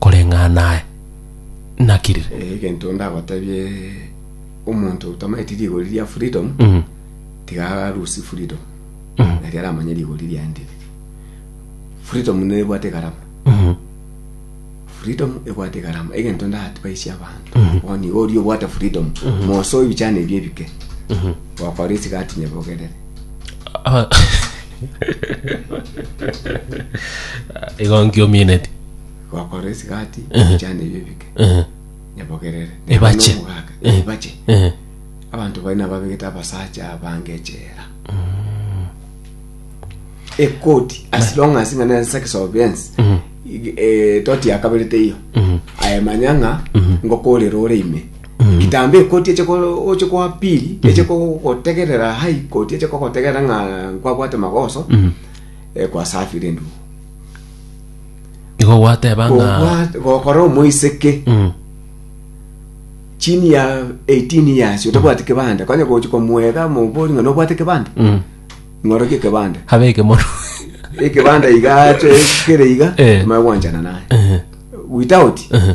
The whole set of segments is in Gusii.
koreng'ana naye. Naki rire? Eh, egento ndagotebie omonto otamaeti rigori ria freedom Mm. tiga arusi freedom Mm. nari aramanye rigori riaende riri freedom nebwate egarama Mhm. freedom ebwate egarama egento ndatibaisia abanto boni iga oria obwate freedom mosoe ebichani ebio ebike gokora esika atinye bogerere Ah, Igo nkiomineti. Gokora esigati Ehe. chane ebio ebike Ehe. nyabogerere Ebache. omogaka Ehe. ebache Ehe. abanto baye nababegete abasacha abange echela ekoti as long as ng'a ne sex offense Mhm. ig- eh, toti yakabere teiyo Mhm. aye manya ng'a ngokorera ore ime kitambo ekoti eche ko- oche koa pili eche kogotegerera hai koti eche kogotegerera ng'a nkwabwate magoso Mhm. eh, kwasafire endugu igo gwateba ng'a Gokwa- gokora omoiseke Mm. chini ya 18 years otabwati kibande kwanya gochi komwega mobori ng'a nobwate kibande Mm. ng'orokie kibande abeke mono ekibande iga ache kere iga Eh. maya gwanchana naye Ehe. without Ehe.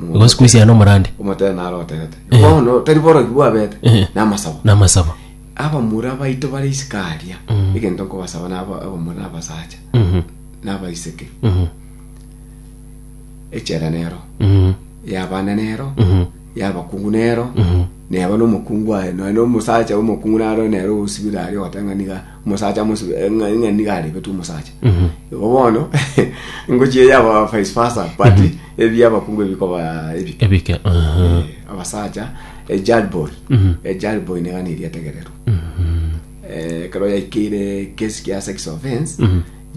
Gosikuisia nomorande. omotene naro oterete bono tari borogi bwabete Eh. namasabo namasaba abamura baito bare isiko aria Mm. egento nkobasaba nabo abamura na abasacha Mhm, nabaiseke mhm, echela nero mhm, yabana nero mhm, yabakungu nero mhm. neba nomokungu aye noe nomosacha omokungu naro nero osibire aria ogoteba ng'a niga omosacha amosu- eh, ng'a- ng'a niga arebetwe omosacha igo bono ngochia eya aba vice versa but ebi abakungu ebikoba ebi ebike aha. Eh, abasacha ejalboy ejalboy niga neri etegererwa Eh, ekero yaikeire kesi kia sex offense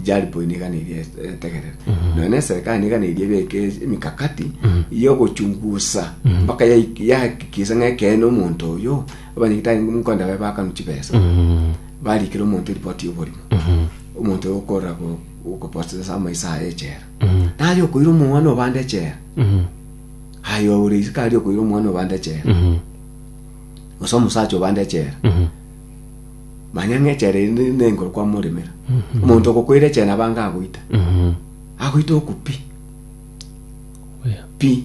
jalboy niga neri et- etegererwa nonya na eserikali niga neri ebeke emikakati yogochungusa mpaka yaik- yahakikisa ng'a ekeene omonto oyo abanyagitari nkonde baye bakanu chibesa barikera omonto eripoti y'oborimo omonto oyo okorora go- ogoprosesa amaiso aye echera nari okoira omwana obande echera aye ore isiko ari okoira omwana obande echera gose omosacha obande echera manya ng'a echera eri ne- nenguru kwamoremera omonto ogokoira echera nabo ange agoita agoita oku pi pi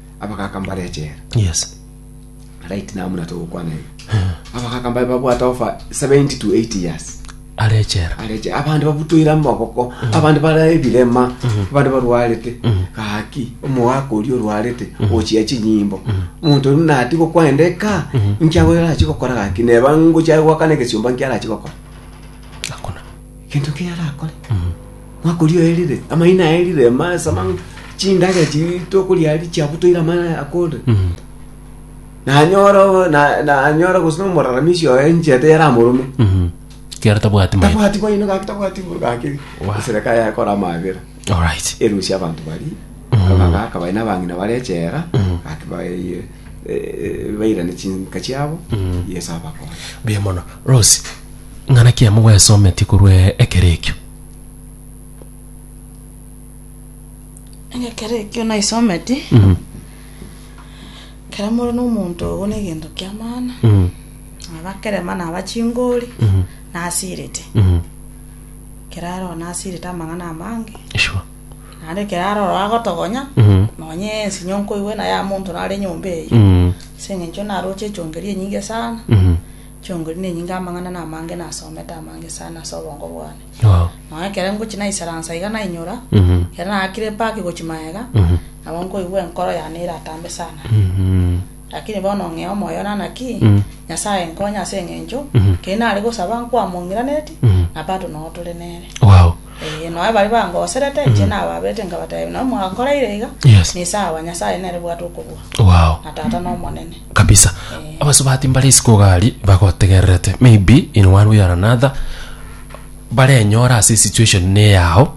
abagaka mbare echela yes right now muna togokwana iga abagaka mbabe babwate ofa 70 to 80 years are echera areche abandi babutoire amaboko abandi bare ebirema abandi barwarete gaki omogaka oria orwarete ochia chinyimbo omonto oria nati gokwenda eka nkiago erachi gokora gaki neba ngochia gwakana egesiomba nkiarachi gokora hakuna gento keria arakore mwaka oria oerire amaina aerire ma- sama chindage chi tokoria ari chiabutoire amaina akorire nanyora na- nanyora gose nomoraramishi oye enchete yaramorome kiara tabwati maete tabwati boino gaki tabwati bono gaki Wa. esereka yakora amabera alright erusia abanto bari abagaka bari nabang'ina bare echera gaki baye eh, eh, bairane chinka chiabo yeso abakore buya mono rose Ng'a naki amo gwesometie korwa ekero ekio? Ng'a ekero ekio naisometie, Mm, ekero more nomonto ogo na egento ki'amana, mm, naba kerema naba chingori, mm, nasirete. mm. Ekero aroro nasirete amang'ana amange, Sure. naende ekero aroro agotogonya, Mm, nonye ensinyo nkoigwe naye ya monto nare nyomba eyio. mm, Ase eng'encho naroche echongeri enyinge sana, mm. Chiongoria nenyinga amang'ana na amange nasomete amange sana ase obongo bwane. Nonya ekero ngochia naisaransa iga nainyora, ekero naakire epaki gochia magega, nabo nkoigwa enkoro yane eratambe sana. Lakini bono ng'ea omoyo one ng'a ki, Nyasae nkonye ase eng'encho keri nare gosaba nkwamong'iranetie, na bado noo tore nere. Ee, nonya baria bangoserete inche nababerete nkabatebia, nonya mwakoreire iga, nisawa, Nyasae nere bwate okobua, na Tata nomonene. kabisa Eh. abasubati mbare isiko gari bagotegererete maybe in one way or another barenyora ase situation ne yao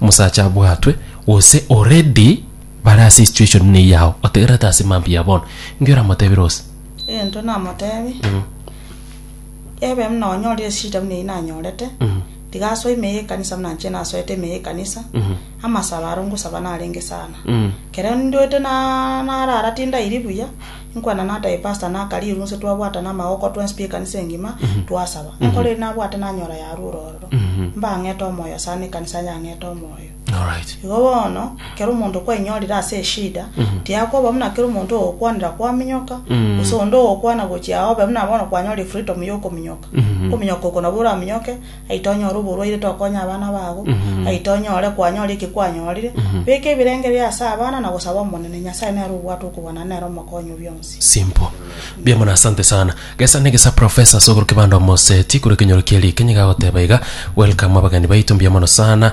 omosacha abwatwe gose already bare ase situation ne yao otegererete ase mambia bono inki oramotebire gose egento namotebi ebe buna onyorire eshida buna eyio nanyorete Tiga asoe ime y'ekanisa buna inche nasoete ime y'ekanisa, amasabo aro ngosaba narenge sana. Ekero nduete na narara tindairi buya, inkwana nataha epastor na akaria erwe inse twabwatana amagoko twensi tw'ekanisa engima, twasaba. Enkoro eria nabwate nanyora yarwa ororo. Mbang'ete omoyo sana, ekanisa yang'ete omoyo. Alright. Igo bono, ekero omonto kwainyorire ase eshida, tiakoba buna kera omonto ogokwanera kwaminyoka, gose onde ogokwana gochia obe buna bono kwanyorire freedom ya okominyoka. Okominyoka oko nabo oraminyoke, aito onyore oborwaire tokonye abana bago, aito onyore kwanyora eki kwanyorire. Beka ebirengererio ase abana na gosaba Omonene, Nyasae nere obwate okobwana nere omokonyi o bionsi. Simple. Mbuya mono asante sana. Gesa ne gesa professor sogoro kibanda omoseti kure kenyoro kieri kenye gagoteba iga. Welcome abageni baitu mbuya mono sana.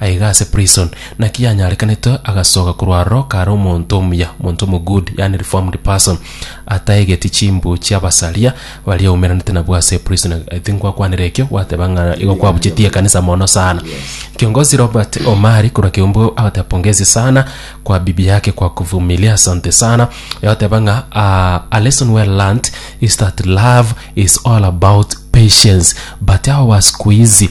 Aiga ase prison. Naki yanyarekanete agasoka korwa aroro kare omonto omuya, monto omogudi, yaani reformed person, ataegeti chimbu chi'abasaria baria aumeranete nabwo ase prison. I think gwakwanire ekio, gwateba ng'a igo kwabuchetie ekanisa mono sana. Kiongozi Robert Omari korwa Kiumbu agateba pongezi sana kwa bibi yake kwa kuvumilia, asante sana. Agateba ng'a ah, a lesson well learnt is that love is all about patience but hawa wa siku hizi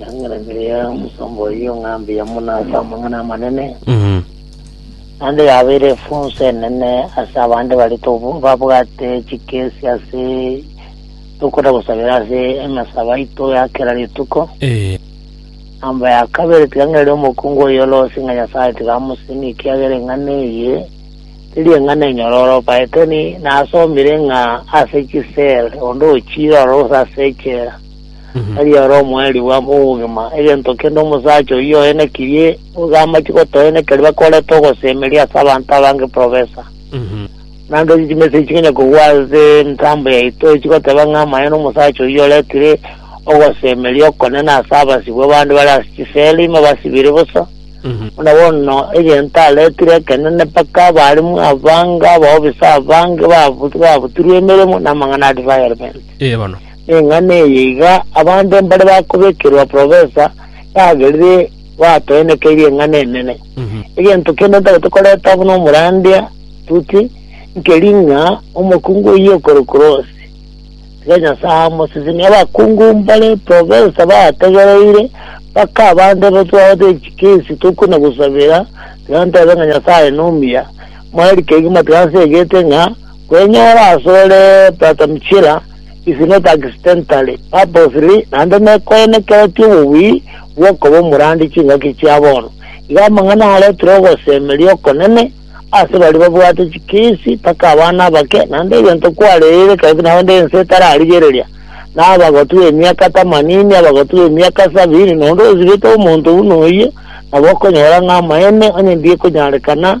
Yang'aranire ya omosomba oyio ng'a mbuya mono ase amang'ana amanene, Mhm. naende yabeire efunso enene ase abande baria tobu- babwate chikesi ase tokoda gosabera ase emasabo aito ya kera rituko. Eh. Namba ya kabere tigang'erere omokungu oyio orosie ng'a Nyasae tigamosimia ekiagera eng'ana eye teri eng'ana enyoro orobaete, ni- nasomire ng'a ase chisel onde ochiire orose ase echela. Tari ore omoerirwa bw'obogima, egento kende omosacha oyio oenekirie, iga amache gotoenekeri bakorete ogosemeria ase abanto abange profesa. Nande chimessage chikonya kogwa ase emitambo yaito chigoteba ng'a amaene omosacha oyio oretire ogosemeria okonene ase abasibwa bande bare ase chisela ime basibire bosa, buna bono egento aretire ekenene mpaka abarimu abange, abaofisa abange babu- babutirwe emeremo namang'ana a defilement. Ee bono. Neng'ana eye iga abanto mbare bakobekerwa profesa yagerire batoenekeirie eng'ana enene. Egento kende ntabete koreta buna omorandia Tuti nkeri ng'a omokungu oyio okorokwa Ross. Tiga Nyasae amosesenie. Abakungu mbare profesa bategereire mpaka abanto aba twabate chikesi tokuna gosabera tiga ntebe ng'a Nyasae nomuya. Mwarikegi matiga nsegete ng'a kwenyora asore Brother Mchira is not accidentally, purposely, naende nekoenekeretie obobui bw'okoba omorandi chingaki chia bono. Iga amang'ana aretire ogosemeria okonene ase baria babwate chikesi mpaka abana abake, naende egento kwarereire karibu naende ense etararigereria, na abagotu b'emiaka tamanini, abagotu b'emiaka sabini, na onde osibete omonto buna oyio, nabo okonyora ng'a amaene onye mbiekonyarekana,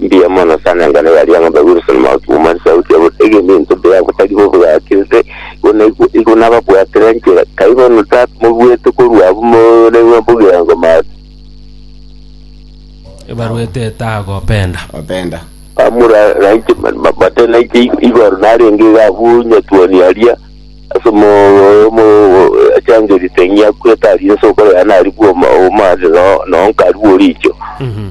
Mbuya mono sana engano yaria ng'ombe Wilson Mauki Mumani sauti ya bono egende into mbuya botari bobwakirire igo naigwe igo nababwatire nchera kai bono tata mobuete korwa abwo more ng'a bogirango mare Ebarwa eteta agopenda. Openda. amura nainche mate nainche igo- igoro narenge iga abwo nyatuoni aria ase mo mo achangerite ng'ia kweta aria ase okore yane ari bwoma omare no no nkarigwe oricho Mhm.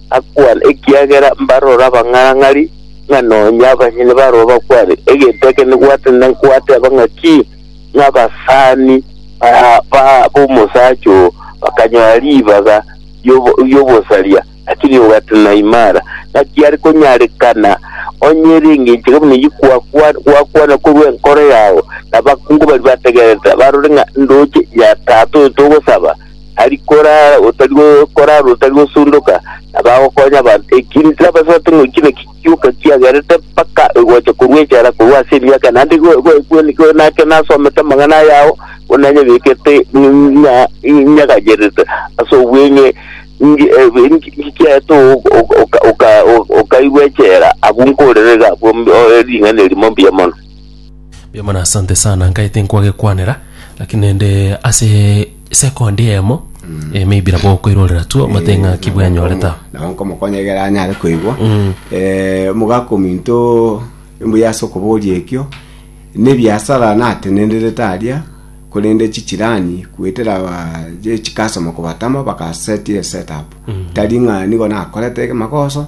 akwane, ekiagera mbarore abang'arang'ari, ng'a nonya abanyene baroo bakwane, egento eke nigwatanire nkoateba ng'a ki, ng'a abasani ba- ba- b'omosacha oo bakanyora ribaga ri'obo- ri'obosaria, lakini ogatana imara. Naki are konyarekana onye ere engencho eke buna eyio kwakwa- gwakwana korwa enkoro yao, na abakungu baria bategerete, barore ng'a ndoche Nyatata oyo togosaba, ari korara otari gokorara otari gosundoka, na bagokonya abanto. Ekiiri tirabasoete ng'a oichire ki gioka kiagerete mpaka egocha korwa echara korwa ase emiaka, naende go- go- go- go- nake nasomete amang'ana ayao, buna nyebekete ng'a nyagacherete ase obweng'e, nge- eh, nge- kiaete o- o- oka- oka- okairwa echela, agwo nkorere iga abwo mb- o- ring'ana erimo mbuya mono. Mbuya mono asante sana nkaete nkwagekwanera lakini naende ase second eyemo eh, maybe nabo okoirorera tu omate ng'a ki bwanyorete aho. nabo nkomokonya egere anyare koigwa Eh, omogaka ominto mbuya ase okoboria ekio na ebiasara natenenderete aria korende chichirani goetera ba chikastomer kobatama bagasetia eset up tari ng'a nigo nakorete magoso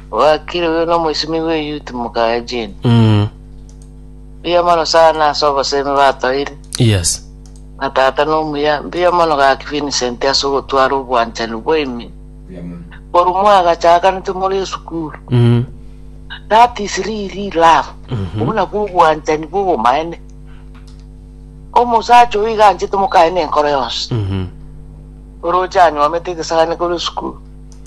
Bwakirwe nomoisimi bw'eyuti mokaya Jane. Mm. Mbuya mono sana ase obosemi batoire. Yes. Na tata nomuya, mbuya mono gaki Vincent ase ogotwara obwanchani bwaino. Korwa mwagachakanete more esukuru. Mm. That is really love. Mhm. Obuna bw'obwanchani bw'obomaene. Omosacha oyo iga anchete mokaye nenkoro yonsi. Mhm. Oroche anyomete egesagane korwa esukuru.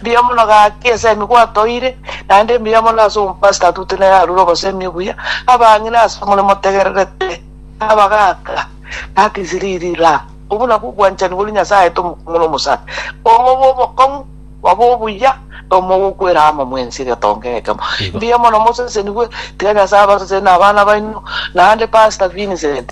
Mbuya mono gaki ase emi gwatoire, naende mbuya mono ase omopastor atute nere arure obosemi obuya, abang'ina ase omore motegererete, abagaaka, that is really love. Obwo nabwo obwanchani boria Nyasae aete omokong'u na omosani, omobe omokong'u, obe obuya, na omobe okwera amo mwensi egetonga ekemo. Mbuya mono mosesenigwe, tiga Nyasae abaseseni na abana baino, naende Pastor Vincent.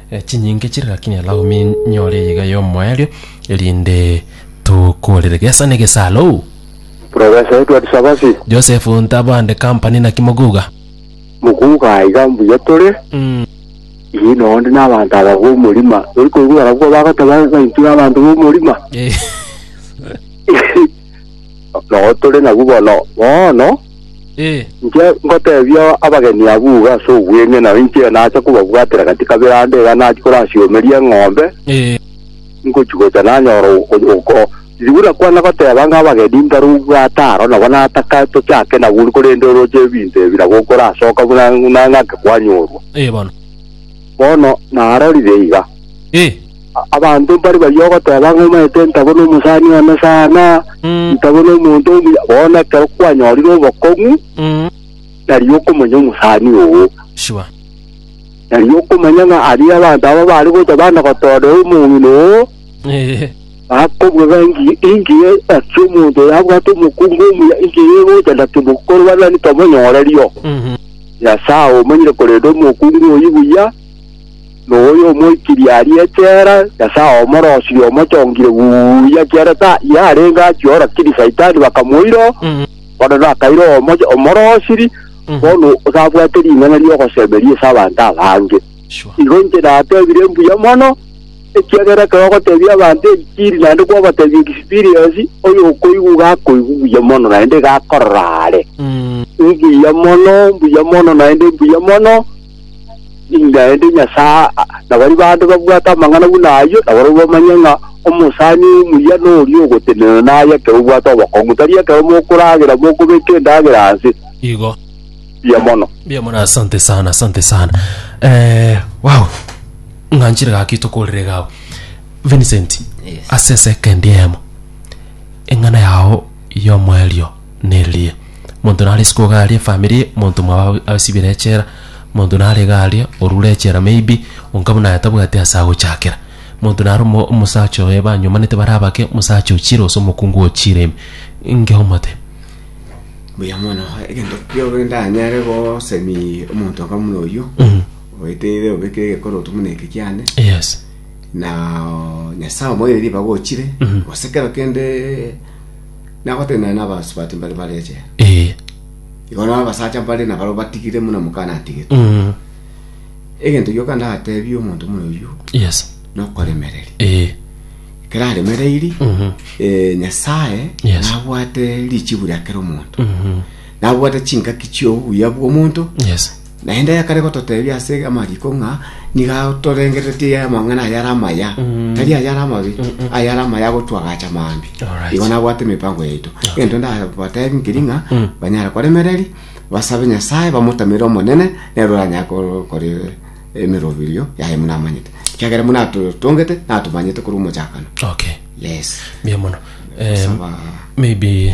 chinyinge chire, lakini alaumi nyore eyega y'omoerio, erinde tokorere gesa negesalo. Professor Edward Sabasi. Joseph Ntabande Company naki moguga? Moguga aiga mbuya tore. Mm. Ii no onde na abanto aba b'omorima. Tori koigwa barabwo bagoteba ng'a intwe abanto b'omorima. Eh. Nao tore nabwo bono. Bono Ee. inche ngotebia abageni abwo iga ase obweng'e, nao inche nacha kobabwatera gati kabere ande iga nachi korasiomeria eng'ombe, Ee. nkochigocha nanyora oko- oko- riria buna kwana goteba ng'a abageni mbaro obwate aro, nabo nataka tochake nabwo ore, korende oroche ebinto ebi nabo okorasoka buna buna ng'ake kwanyorwa. Ee bono. Bono narorire iga. Ee. Abanto mbare baria ogoteba ng'a omanyete ntago nomosani one sana, Mm. ntago nomonto omuya, bono ekero kwanyorire obokong'u, Mm. nari okomanya omosani oo. Sure. Nari okomanya ng'a aria abanto aba bare gocha bana gotoorera omong'ina oo, Eh. bakobua ng'a engi- engiya naki omonto oyo abwate omokungu omuya, engiya egocha naki mokorwana ntomonyore rio. Mhm. Nyasae omanyire korenda omokungu oyio buya, noyo omoikiri aria echela, Nyasae omorosire omochongire buya kiagera ta yarenge achio rakiri Saitani bakamoira oo, bono nakaire omoche omorosiri bono osabwate ring'ana riogosemeria ase abanto abange. Sure. Igo inche natebire mbuya mono, ekiagera ekero ogotebia abanto enchiri naende kwabatebia experience, oyo okoigwa iga akoigwa buya mono naende iga akorora are. Mbuya mono, mbuya mono naende mbuya mono. Naende Nyasae na baria bande babwate amang'ana buna ayio, nabarabwo bamanye ng'a omosani omuya noria ogotenena naye ekero obwate obokong'u, tari ekero mokoragera mokobeka endagera aase. Igo. Mbuya mono. Mbuya mono, asante sana, asante sana. Eh, wow. Ng'anchire gaki tokorire gago. Vincent, Yes. ase second yemo. Eng'ana yao yomoerio. neririe. Monto nare isiko iga aria efamiri, monto mwabo ab- asibire echela, monto nare iga aria orure echela maybe, onka buna aye tabwati ase agochakera. Monto nare omo- omosacha oye banyomanete bare abake, omosacha ochire gose omokungu ochire ime. Inki omote? Buya mono, egento kiago ndanyare gosemia omonto onga buna oyio, Mhm. oeteire obeke egekoroto buna eke kiane, Yes. na Nyasaye omoeire ribaga ochire, Mhm. gose kero kende Nagotenena nabasubati mbare bare echela. Ee. Igo nao abasacha mbare nabaro batigire muna mokana atigete. Mm. Egento gioka ndatebie omonto muna oyio Yes. nokoremereria. Ee. Ekero aremereiri Mhm. eh, Nyasaye Yes. nabwate richibu riakera omonto. Mhm. Nabwate chingaki chiobuya bw'omonto Yes. Naende yakare gototebia ase amariiko ng'a nigo atorengereretie amang'ana ayare amaya, tari ayare amabe, ayare amaya agotwagacha mambia. Alright. Igo nabwate emipango yaito. Egento ndabatebi nkeri ng'a banyare koremereri, basabe Nyasae, bamotamere Omonene, nere oranyare ko- kore emeroberio yaye buna amanyete. Ekiagera buna atotongete, natomanyete korwa omochakano. okay Yes. mbuya mono Em, Saba. maybe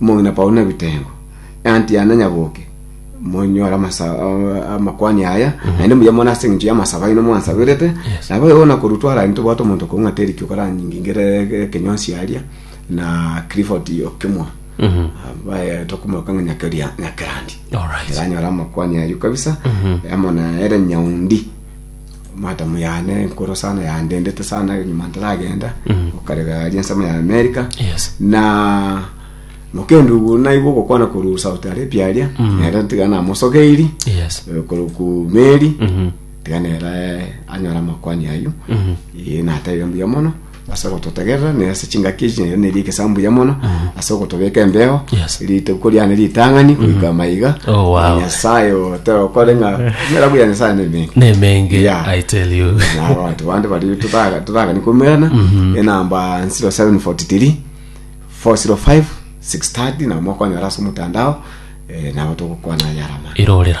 Omong'ina Paulo nebitengo, eAntiana nyaboke, monyore amasa- a- amakwani aya, naende muya mono ase engencho y'amasabo aino mwansaberete, Yes. nabo igo nakorwa twarani tobwate omonto kong'a Deriki okoranyingingere ekenywansi aria, na Clifford okemwa Mhm. baye tokomoka ng'a nyakeria nyakerandi Alright. eranyora amakwani ayo kabisa amo na ere nyaundi Matamu yane enkoro sana yandendete sana nyuma ntaragenda okarega ari ensemo ya America Yes. na mokendo ogo naigwa ogokwana korwa South Arabia aria nere tiga namosogeiri Yes. eh, korwa ku meri Mhm. tiga nere anyora amakwani ayu Eh, nateire mbuya mono ase ogototegerera na ase chingaki echi nario neri egesamu buya mono ase ogotobeka embeyo Yes. rituko riane ritang'ani goika maiga Oh, wow. Na nyasaye oteokore ng'a mera buya nyasaye nemengi nemenge Yeah. i tell you nabo bantu bande bari tutaga- tutagani komerana enamba 0743 405 630 nabo mokonyora ase omotandao eh, nabo togokwana yarama irorera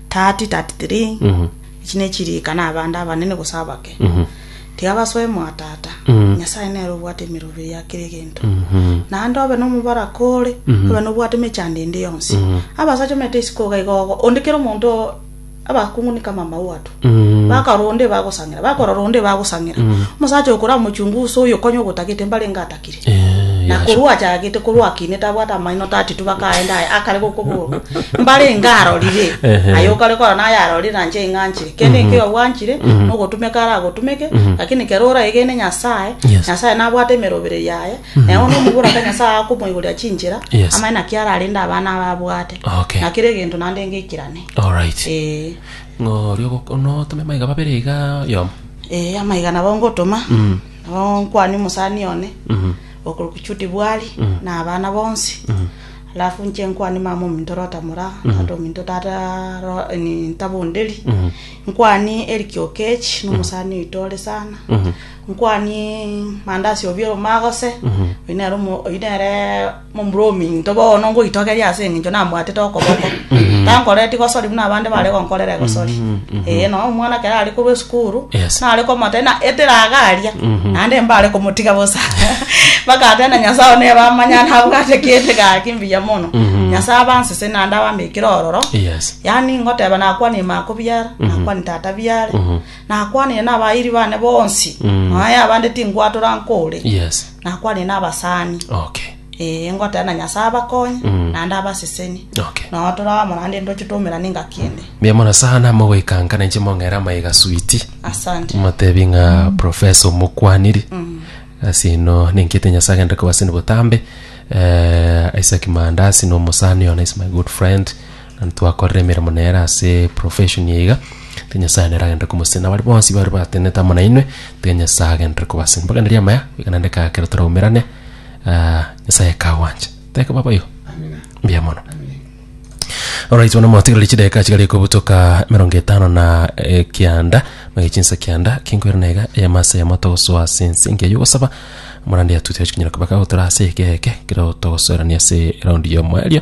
30, 33 Mhm. Echi nechirikana abande abanene gose abake Mhm. tiga basoe mwatata Mhm. nyasaye nere obwate emerobio ya kera egento Mhm. naende obe nomobaraka ore Mhm. obe nobwate emechando ende yonsi Mhm. abasacha omanyete isiko iga iga ogo onde kera omonto o- abakungunika amama watu Mhm. bakarora onde bagosang'era bakorora onde bagosang'era Mhm. omosacha okoramochungusa oyo konya ogotagete mbarenge atake Yachakire. Eh, Na yasho. korwa achagete korwa akine tabwate amaino 32 bakaenda aye akare gokoborwa mbare enga arorire Ehe. aye okare kora naye arorire nanche ing'anchire kende ekio yabwanchire nogotumeka ara agotumeke lakini kero oraegene nyasaye Yes. nyasaye nabwate emerobere yaye naye ono omobura ka nyasaye akomoigoria chinchera Yes. amae naki ararende abana aba abwate Okay. na kere egento nande ngeikirane alright eh ng'ori ogoko- notome maiga babere iga yomo eh amaiga nabo ngotoma Nonkwane omosani one okorokwa Judy Bwali, na abana bonsi. Alafu nche nkwane mama ominto Rota Mura, tata ominto tata Ro- ni- Ntabo Onderi. Nkwani Eric Okech, nomosani oito ore sana. Nkwani Mandasi Obiero Magose, oyo nere omo- oyo nere Momura ominto bono ngoitogeria ase engencho nambwatete okoboko. Tankoreti gosori buna abande bare gonkorera egosori. Ee, nonya omwana ekero are korwa esukuru, Yes. nare komotebia na etiraga aria, naende mbare komotiga bosa. Bagateba na Nyasae one eba amanyare nabwate kende gaki mbuya mono. Nyasae abansese naende abambekire ororo. Yes. Yaani ngoteba nakwanie maakobia are, nakwanie tata biare. Nakwanire nabairi bane bonsi, Mm. nonya abande tinkwatora nkore. Yes. Nakwanire nabasani, Okay. ee, ngoteba na Nyasae abakonye, Mm. naende abaseseni. Okay. Nonya toraba morande ntoche tomerane engaki ende. Mbuya mono sana mogoikanka na inche mong'era amaiga switi. Asante. Motebi ng'a profesa omokwaniri. Asi eno nenkete Nyasae agende kobasini botambe. Eh, Isaac Mandasi na omosani ona is my good friend. Ntwakorire emeremo nere ase profession eye iga, tiga Nyasae nere agenderere komosesenera. Abare bonsi bare batenenete amo nainwe, tiga Nyasae agenderere kobasesenera. Mpaka neri amaya, goika naende kare ekero toraumerane, ah, Nyasae akagwancha. Teka baba oyo. Mbuya mono. Alright, bono motigereri chidakika chigare kobutoka emerongo etano na eh, kianda mage chinsa kianda kinkwera na iga eyemo ase eyemo togosoa ase ense engiya y'ogosaba morande yatuti gochikonyera kobaka gotora ase eke eke kero togosoerania ase eraundi y'omoerio